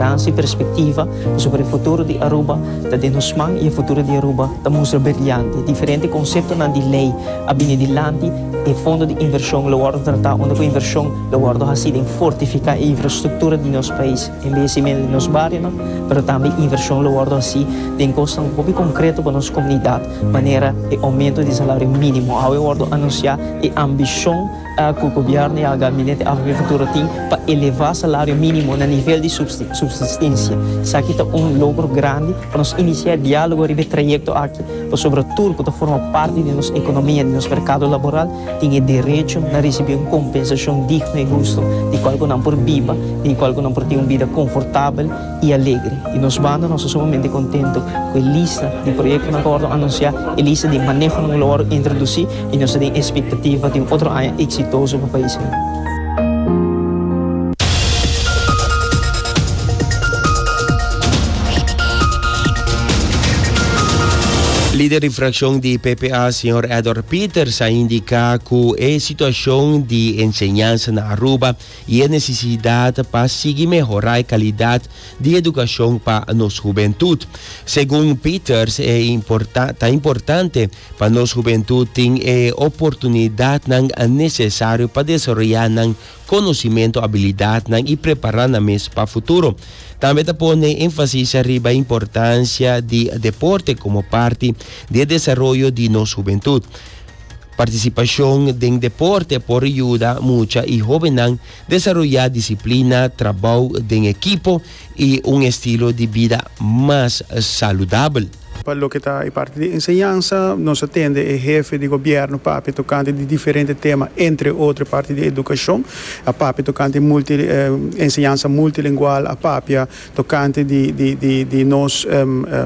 Tan si perspektiva pasobra e futuro di Aruba ta den nos man i e futuro di Aruba ta mustra berliante. Diferente konseptonan di lei a bini dilanti, e fondo di invershon lo wòrdu tratá unda ku invershon lo wòrdu hasi den fortifiká e infrastruktura di nos pais, embelesimentu di nos barionan, pero tambe invershon lo wòrdu hasi den kosnan hopi konkreto pa nos komunidat, manera e oumentu di salario mínimo. Awe wòrdu anunsiá e ambishon. Cu Gobierno ya Gabinete Agricultura tin pa eleva salario minimo na nivel di subsistencia. Esaki ta un logro grandi pa nos inicia dialogo riba e trayecto aki, pasobra tur cu ta forma parti di nos economia, di nos mercado laboral, tin e derecho na ricibi un compensacion digno y husto, di cual cu nan por biba, di cual cu nan por tin un bida confortabel, i alegre i nos banda nos ta sumamente kontentu ku e lista di proyektonan ku wòrdu anunsiá, e lista di manehonan ku lo wòrdu introdusí i nos ta den espektativa di un otro aña eksitoso pa pais ei. Lider di frakshon di PPA, señor Edward Peters, a indiká ku e situashon di enseñansa na Aruba, I e nesesidat pa sigui mehorá e kalidat di edukashon pa nos hubentut. Segun Peters e importa ta importante pa nos hubentut tin e oportunidatnan nesesario pa desaroyá nan konosimentu, abilidatnan i prepará nan mes pa futuro. Tambe ta pone énfasis riba e importansia di deporte komo parti di e desaroyo di nos hubentut. Participacion den deporte por yuda mucha y hobennan desaroya disciplina, trabao den equipo y un estilo di bida mas saludabel. Pa loke ta e parti di enseñansa, nos a tende e hefe di gobierno papia tocante di diferente tema, entre otro e parti di educacion, a papia tocante multi enseñansa multilingual, a papia Tocante di di nos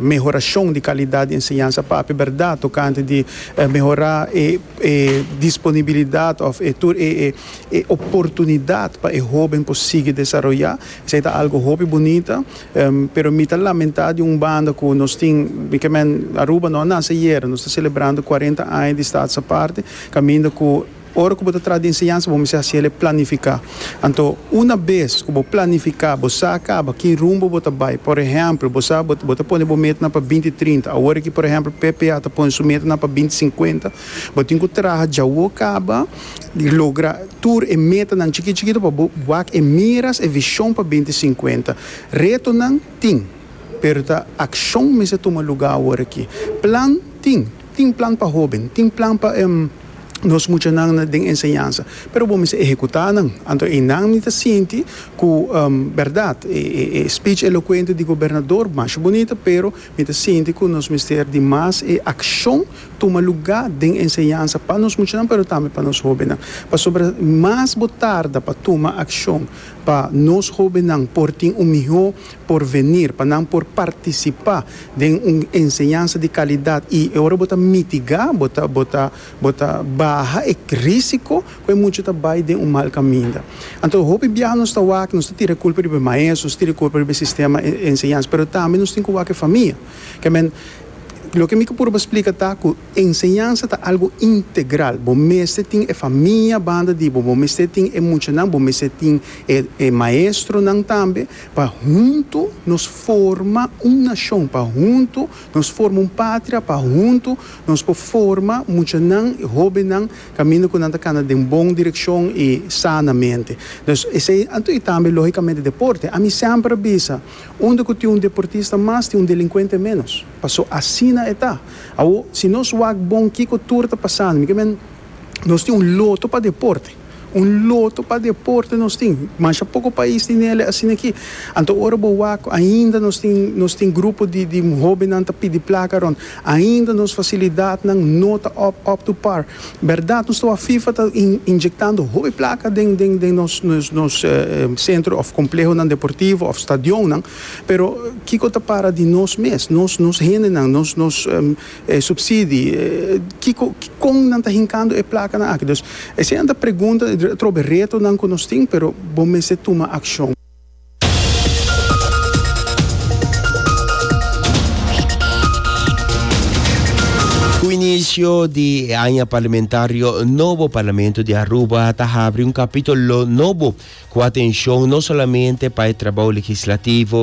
mehoracion di calidad di enseñansa papia berdad, tocante di mehora e e disponibilidad of e tur e e e oportunidad pa e hoben por sigui desaroya, esey ta algo hopi bunita, pero mi ta lamenta di un banda cu nos tin, mi ke men Aruba no a nace ayer, nos ta celebrando cuarenta aña di Stadsaparte, caminda cu. Ora ku bo ta traha di enseñansa bo mester hasi el e planifiká. Anto una bes ku bo planifiká, bo sa kaba ki rumbo bo ta bai. Por ehèmpel, bo sa bo ta pone bo metanan pa binti trinta. Awor aki, por ehèmpel, PPA ta pone su metanan pa binti sinkuenta. Bo tin ku traha djawo kaba di logra tur e metanan chikito chikito pa bo wak e miras, e vishon pa binti sinkuenta. Retonan tin, pero ta akshon mester tuma lugá awor aki. Plan tin. Tin plan pa hóben, tin plan pa nos muchanan den enseñansa, pero bo mester ehekutá nan. Anto einan mi ta sinti ku bèrdat, e speech elokuente di gobernador masha bunita, pero mi ta sinti ku nos mester di mas e akshon tuma lugá den enseñansa pa nos muchanan, pero tambe pa nos hóbennan. Pasobra mas bo tarda pa tuma akshon pa nos hóbennan por tin un mihó. por venir pa nan por participa den un enseñansa di calidad y e ora bo ta mitiga bo ta bo ta bo ta baha e risico cu e mucha ta bay den un mal caminda. Anto hopi biaha nos ta wak nos ta tira e culpa riba e maestro nos ta tira e culpa riba e sistema e enseñansa pero tambe nos tin cu wak e famia kmn loke mi purba splica ta cu enseñansa ta algo integral bo mester tin e famia banda di bo bo mester tin e muchanan bo mester tin e e maestronan tambe Pa huntu nos forma un nashon, pa huntu nos forma un patria, pa huntu nos por forma muchanan i hóbennan kaminda ku nan ta kana den bon direkshon i sanamente. Dus esei anto i tambe lógikamente deporte. Ami semper a bisa, unda ku tin un deportista mas tin un delinkuente ménos, paso asina e ta. Awor, si nos wak bon kiko tur ta pasando, mi ke men Nos tin un loto pa deporte. Un loto pa deporte nos tin. Masha poko pais tin el'e asina aki. Anto ora bo wak ainda nos tin nos tin grupo di di hobennan ta pidi plaka rònt. Ainda nos fasilidatnan no ta up up to par. Bèrdat nos ta wak fifa ta in injektando hopi plaka den den den nos nos nos sentro òf komplehonan deportivo òf stadionnan, pero kiko ta para di nos mes, nos nos hendenan, nos nos. E subsidi, kiko, kon nan ta hinkando e plakanan aki? Dus, eseinan ta pregunta, atrobe retonan ku nos tin, pero bo mester tuma akshon. Ku inisio di e aña parlamentario nobo, Parlamento di Aruba ta habri un kapítolo nobo ku atenshon no solamente pa e trabou legislativo,